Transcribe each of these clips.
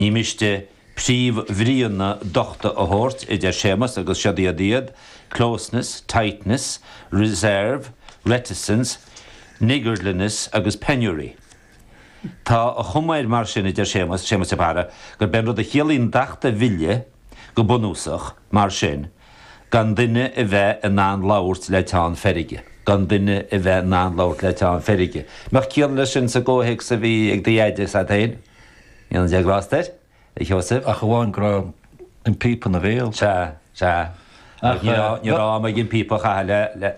Ní miste príomhbhríonna dochta a thabhairt, a deir Séamas, agus siod iad iad, closeness, tightness, reserve, reticence, niggardliness agus penury. Tá a chuma air mar sin, a deir Séamas, Séamas de Barra, gurb é an rud a chiallaíonn dachta mhille, go bunúsach, mar sin, gan duine a bheith in ann labhairt le teann feirge. gan duine a bheith in ann labhairt le teann feirge. mbeadh ciall leis sin sa gcomhthéacs a bhí ag do dheaide, is ea féin? Níl an déag lá is d'oir, a Sheosaimh. Ach amháin go raibh an píopa ina bhéal. Sea, sea. Ach ní raibh, ní raibh ag an píopa a chaitheamh le, le,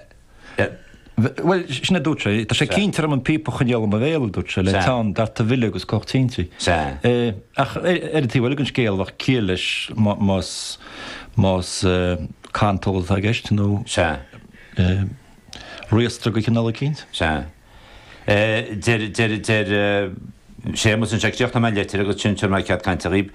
le. Bhuel, sin a dúirt sé. Tá sé cinnte orm an píopa a choinneáil i mo bhéal, a dúirt sé, le teann darta mhille agus cuthach tinte. Sea. Ach ar an taobh eile den scéal, bheadh ciall leis más, más cantal atá i gceist nó, riastradh de chineál eicínt. Sea. Deir Séamas ansin, críochnóidh mé an litir agus ansin tabharfaidh mé cead cainte dhaoib.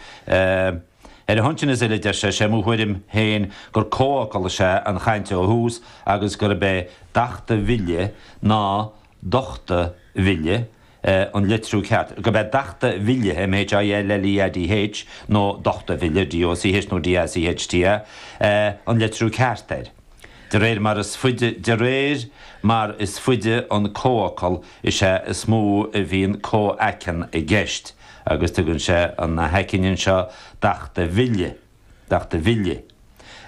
Ar a shon sin is uile, deir sé, Sé mo thuairim féin gur comhfhocal is ea an chaint ó thús agus gurb é dachta mhilleadh nó dochta mhilleadh an litriú ceart, gurb é dachta bhille, M-H-I-L-L-E-A-D-H, nó dochta mhilleadh, D-O-C-H nó D-A-C-H-T-A, an litriú ceart air. De réir mar is faide De réir mar is faide an comhfhocal is ea is mó a bhíonn comhaiceann i gceist, agus tugann sé an na haicinn anseo dachta mhille, dachta mhille,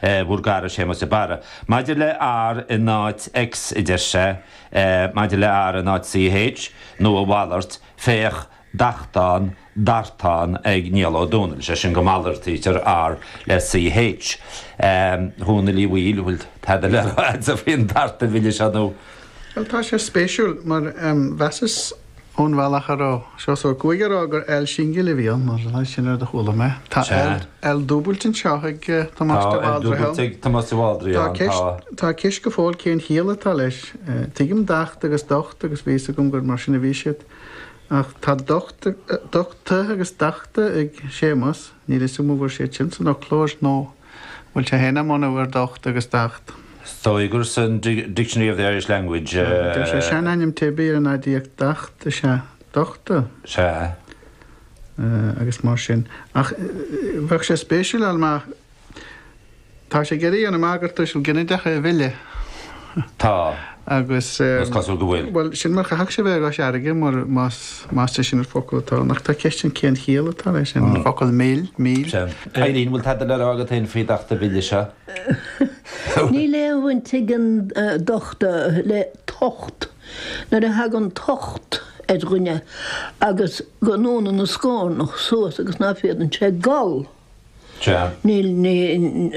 eh, bhur gcara Séamas de Barra. Maidir le R in áit X, a deir sé, eh, maidir le R in áit CH, nó a mhalairt, féach, dachtán, dartán ag Niall Ó Dónaill, sé sin go malartaítear R le CH. A Dhónaill Uí Bhaoill, an bhfuil tada le rá agatsa faoin darta mhille seo nó? Bhuel, tá sé spéisiúil, mar mheasas ón bhealach a raibh Seosamh Ó Cuaig ag rá gur L singil a bhí ann, nó sin an rud a chuala mé. Tá L L dúbailte anseo ag Tomás de Bhaldraithe. Tá L dúbailte ag Tomás de Bhaldraithe ann, tá. Tá ceist go fóill cén chiall atá leis. Tuigim dacht agus docht agus bhí fhios agam gur mar sin a bhí siad. Ach tá docht agus dachta ag Séamas, níl 'fhios a'm an bhfuil siad sin san fhoclóir nó an bhfuil sé féin á mbunú ar docht agus dacht. Theuiger san Dictionary of the Irish Language. Deir sé seanainm teibí ar an aidiacht dacht is ea dochta. Sea. Agus mar sin. Ach bheadh sé spéisiúil, an mbeadh? Tá sé ag iarraidh a dhéanamh amach gur tuiseal ginideach é a mhilleadh. Tá, agus is cosúil go bhfuil. Bhuel, sin mar a chaithfeadh sé bheith i gCois Fharraige, mar más é sin an focal atá ann. Ach tá ceist ann cén chiall atá leis an bhfocal mill, mil. Sea. Eilín, bhfuil tada le rá agat féin faoi docht an mhille seo? Níl aon bhaint ag an docht le tocht. Nuair a thagann tocht ar dhuine agus go ndúnann a scornach suas agus ná féadann sé gol,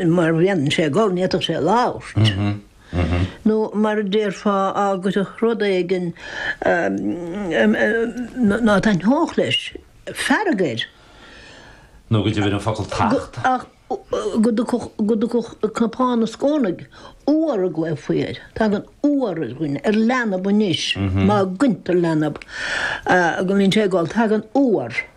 mar a bhíonn sé ag gol, ní fhéadfadh sé labhairt, nó mar a déarfá, á gcuirfeadh rud éigin ná taitneodh leis, fearg air. Nó go dtiocfadh an focal tocht. Ach go dtiocfadh cnapán ina scornaigh, uabhar a ghlaofaí air. Tagann uabhar ar dhuine, ar leanbh anois, má ghointear leanbh, go mbíonn sé ag gol, tagann uabhar.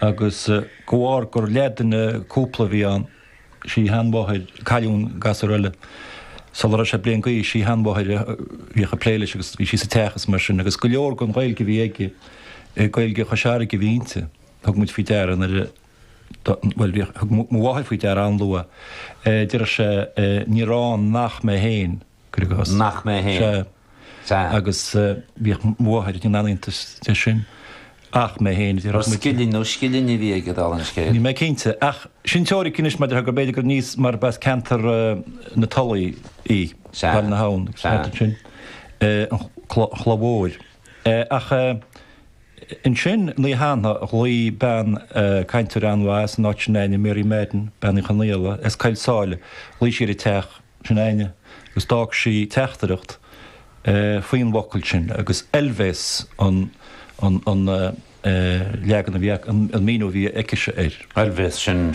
Agus de bharr gur leathdhuine cúpla a bhí ann, sí a sheanmháthair, cailleadh an gasúr eile. Sula raibh sé bliain d'aois, sí a sheanmháthair a bhíodh ag plé leis agus bhí sí sa teach is mar sin. Agus go leor den Ghaeilge a bhí aige, Gaeilge Chois Fharraige a bhí inti. Thug muid faoi deara nuair a, bhuel, bhí, thug mo mháthair faoi deara an-luath, deireadh sé, 'Níor fhan nach mé féin Gregos. Nach mé féin. Sea. Sea. Agus bhíodh mo mháthair ag déanamh iontas de sin. Ach mé féin, déarfadh muid. Ar scilling nó scillinní a bhí aige, dála an scéil? Níl mé cinnte. Ach sin teoiric anois maidir le gur b'fhéidir gur níos, mar ba as ceantar na Tulaí í, Baile na hAbhann, an ceantar sin, an Chloch Mhóir. Ach ansin, an oíche cheana, ghlaoigh bean, cainteoir an-mhaith as an áit sin, Áine Mary Madden, Bean Uí Chonaola, as Coill Sáile, ghlaoigh sí ar an teach, sin Áine, agus d'fhág sí teachtaireacht faoin bhfocal sin, agus oilbhéas an leagan a bhí, an míniú a bhí aici air. Oilbhéas, sin